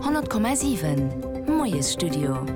100,7 Moiesstudio.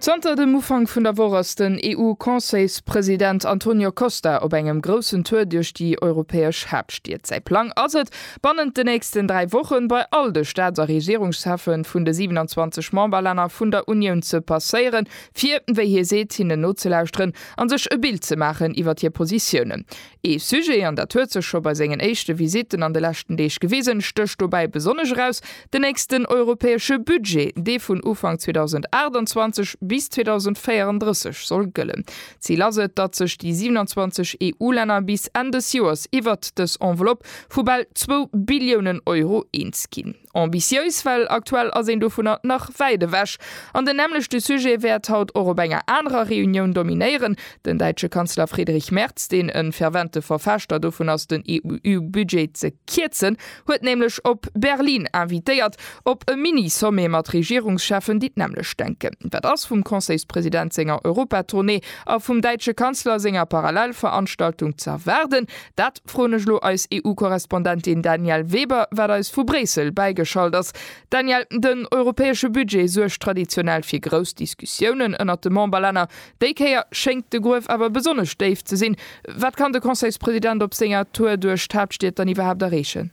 Zanter dem Ufank vun der Woch ass den EU-Conseilspresident Antonio Costa op engem groussen Tour duerch déi europäesch Haaptstied. Säi Plang ass et, bannent de nächsten dräi Wochen bei all de Staats a Regierungscheffe vun de 27 Memberlänner vun der Unioun ze passéieren, fir, wéi hie seet, hinnen nozelauschteren a sech e Bild ze maachen iwwer hir Positiounen. Ee Sujet, an dat huet sech scho bei sengen éischte Visitten an de leschten Deeg gewisen, stécht dobäi besonnesch eraus, den nächsten europäesche Budget, dee vun Ufank 2028 bis 2034 soll gëllen. D'Zil ass et, datt sech déi 27 EU-Länner bis Enn des Joers iwwert dës Enveloppe vu bal zwou Billiounen Euro eens ginn. Ambitiéis, well aktuell ass een dovunner nach wäit ewech. An den nämmlechte Sujet wäert haut och op enger anerer Reunioun dominéieren. Den däitsche Kanzler Friedrich Merz, deen e fervente Verfechter dovun ass den EU-Budget ze kierzen, huet nämlech op Berlin invitéiert, op e Mini-Sommet mat Regierungscheffen, déi d'nämmlecht denken. Wat ass vum Conseilspresident senger Europa-Tournée a vum däitsche Kanzler senger Parallelveranstaltung ze erwaarden? Dat. Froen ech lo eis EU-Korrespondentin Danièle Weber, wat eis vu Bréissel bäigeschalt ass. Danièle, den europäesche Budget suergt traditionell fir grouss Diskussiounen ënnert de Memberlänner. Déi Kéier schéngt de Gruef awer besonnesch déif ze sinn. Wat kann de Conseilspresident op senger Tour duerch d'Haaptstied dann iwwerhaapt erreechen?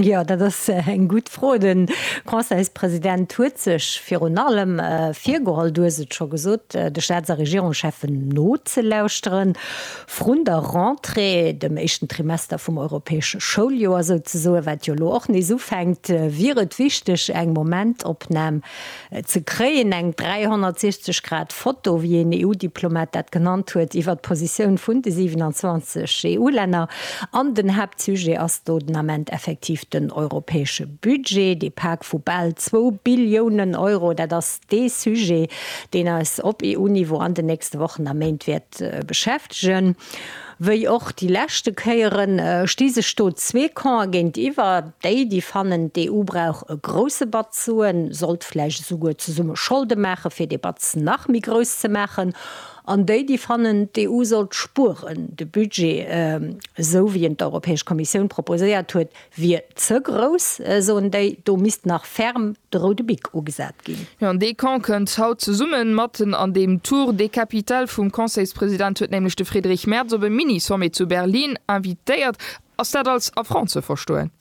Jo, dat ass eng gutt Fro. De Conseilspresident huet sech virun allem virgeholl, du hues et scho gesot, de Staats a Regierungscheffen nozelauschteren, vrun der Rentrée, dem éischten Trimester vum europäesche Schouljoer souzesoen, wat jo elo och nees ufänkt, wier et wichteg, eng Momentopnam ze kréien, eng 360 Grad Foto, wéi een EU-Diplomat dat genannt huet, iwwert d'Positioun vun de 27 EU-Länner. An den Haaptsujet ass do den Ament effektiv den europäesche Budget, dee Pak vu bal zwou Billiounen Euro. Dat ass dee Sujet, deen eis op EU-Niveau an den nächste Wochen a Méint wäert beschäftegen. Wéi och déi leschte Kéieren sti sech do zwee Campe géintiwwer, déi, déi fannen, d'EU brauch e grousse Batz Suen, sollt vläicht esouguer zesumme Scholde maachen, fir dee Batz nach méi grouss ze maachen, an déi, déi fannen, d'EU sollt spueren, de Budget, esou wéi en d'Europäesch Kommissioun proposéiert huet, wier ze grouss, soen déi. Do misst nach ferm de roude Bic ugesat ginn. Jo, an dee Camp kënnt haut zesummen, matten an deem Tour de capitale vum Conseilspresident huet nämlech de Friedrich Merz op e Mini-Sommet zu Berlin invitéiert. Ass dat als Affront ze verstoen?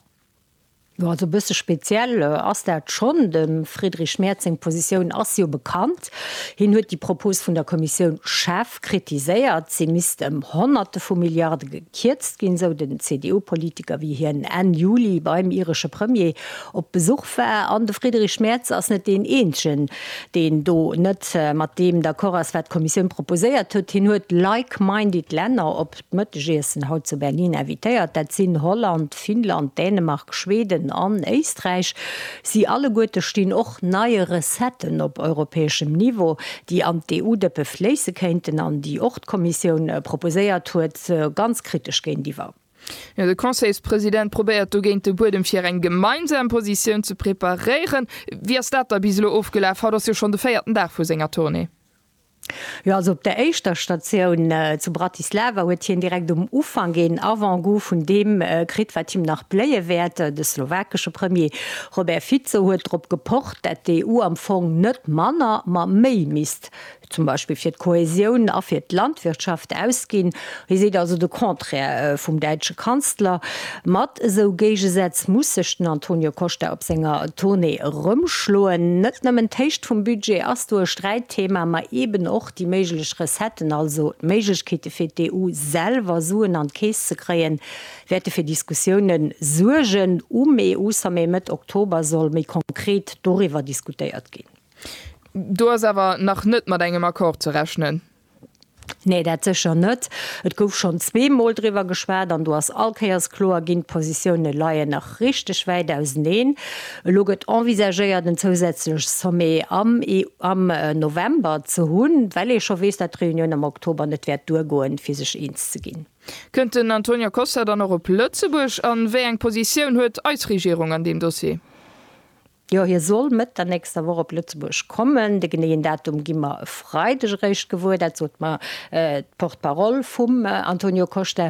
Jo, also e bësse speziell ass dat schonn. Dem Friedrich Merz seng Positioun ass jo bekannt. Aspekt. Hien huet déi Propos vun der Kommissioun schaarf kritiséiert, se misst ëm Honnerte vu Milliarde gekierzt ginn, sou den CDU-Politiker, wéi hien Enn Juli beim iresche Premier op Besuch war. An de Friedrich Merz ass net deen eenzegen, deen do net mat deem d'accord ass, wat d'Kommissioun proposéiert huet. Hien huet like-minded Länner op. D'Mëttegiessen haut zu Berlin invitéiert, dat sinn Holland, Finnland, Dänemark, Schweden an Éisträich. Si alleguerte stinn och neie Recetten op europäeschem Niveau, déi an d'EU-Dëppe fléisse kéinten an déi och d'Kommissioun proposéiert huet, ganz kritesch géintiwwer. De Conseilspresident probéiert dogéint de Buedem fir eng gemeinsam Positioun ze preparéieren. Wéi ass dat da bis elo ofgelaf? Haut ass jo schonn de véierten Dag vu senger Tournée. Jo, also op der éischter Statioun zu Bratislava huet hien direkt um Ufank een Avant-goût vun deem kritt, wat him nach bléie wäert. De slowakesche Premier Robert Fico huet drop gepocht, dat d'EU am Fong net manner, ma méi misst zum Beispill fir d'Kohäsioun a fir d'Landwirtschaft ausginn. Hie seet also de Contraire vum däitsche Kanzler. Mat esou Géigesätz muss sech den Antonio Costa op senger Tournée erëmschloen. Net nëmmen d'Héicht vum Budget ass do e Sträitthema, ma eeben och déi méiglech Recetten, also d'Méiglechkeete fir d'EU selwer Suen an d'Keess ze kréien, wäerte fir Diskussioune suergen. Um EU-Sommet Mëtt Oktober soll méi konkret doriwwer diskutéiert ginn. Do ass awer nach net mat engem Accord ze rechnen. Nee, dat sécher net. Et gouf schonn zweemol driwwer geschwat an do ass all Kéiers kloer ginn, d'Positioune leien nach richteg wäit auseneen. Elo gëtt envisagéiert en zousätzlech Sommet am am November ze hunn, well ee scho weess, datt d'Reunioun am Oktober net wäert duergoen, fir sech eens ze ginn. Kënnt den Antonio Costa dann och op Lëtzebuerg an wéi eng Positioun huet eis Regierung an deem Dossier? Jo, hie soll Mëtt der nächster Woch op Lëtzebuerg kommen. De geneeën Datum gi mer e Freideg eréischt gewuer. Dat sot mer d'Porte-parole vum Antonio Costa.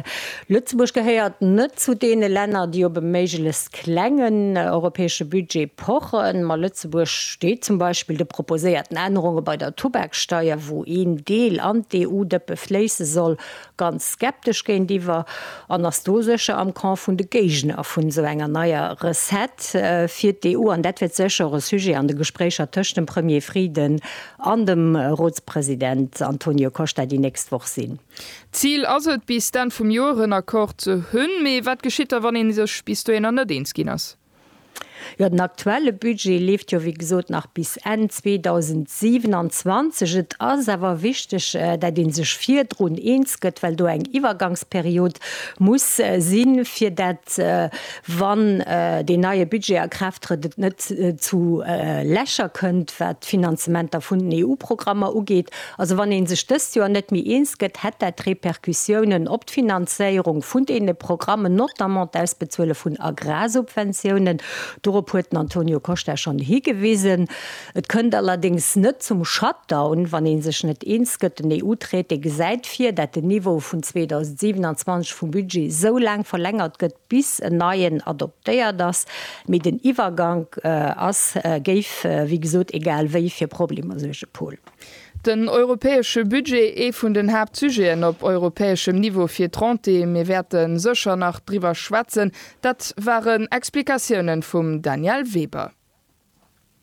Lëtzebuerg gehéiert net zu deene Länner, déi op e méiglechst klengen europäesche Budget pochen. Ma Lëtzebuerg steet zum Beispill de proposéierten Ännerunge bei der Tubaksteier, wou een Deel an d'EU-Dëppe fléisse soll, ganz skeptesch géintiwwer an ass do sécher am Camp vun de Géigner vun esou enger neier Recette fir d'EU. An dat wäert sécher och e Sujet an de Gespréicher tëscht dem Premier Frieden an dem Rotspresident Antonio Costa déi nächst Woch sinn. D'Zil ass et, bis d'Enn vum Joer en Accord ze hunn. Mee wat geschitt da, wann ee sech bis dohinner net eens ginn ass? Jo, den aktuelle Budget leeft jo wéi gesot nach bis Enn 2027. Et ass awer wichteg, dat ee sech virdrun eens gëtt, well do eng Iwwergangsperiod muss sinn, fir dat, wann deen neie Budget a Kraaft trëtt, et net zu Lächer kënnt, wat d'Finanzementer vun den EU-Programmer ugeet. Also wann ee sech dëst Joer net méi eens gëtt, hätt dat Repercussiounen op d'Finanzéierung vun deene Programmen, notamment d'Ausbezuele vun Agrarsubventiounen. Dorop huet den Antonio Costa schonn higewisen. Et kënnt allerdéngs net zum Shutdown, wann ee sech net eens gëtt. Den EU-Traité gesäit vir, dat den Niveau vun 2027 vum Budget esou laang verlängert gëtt, bis en neien adoptéiert ass. Mee den Iwwergank ass, géif wéi gesot, egal wéi fir Problemer suergen, Paul. Den europäesche Budget, ee vun den Haaptsujeten op europäeschem Niveau fir d'Renté, mir wäerte sécher nach driwwer schwätzen. Dat waren Explikatiounen vum Daniel Weber.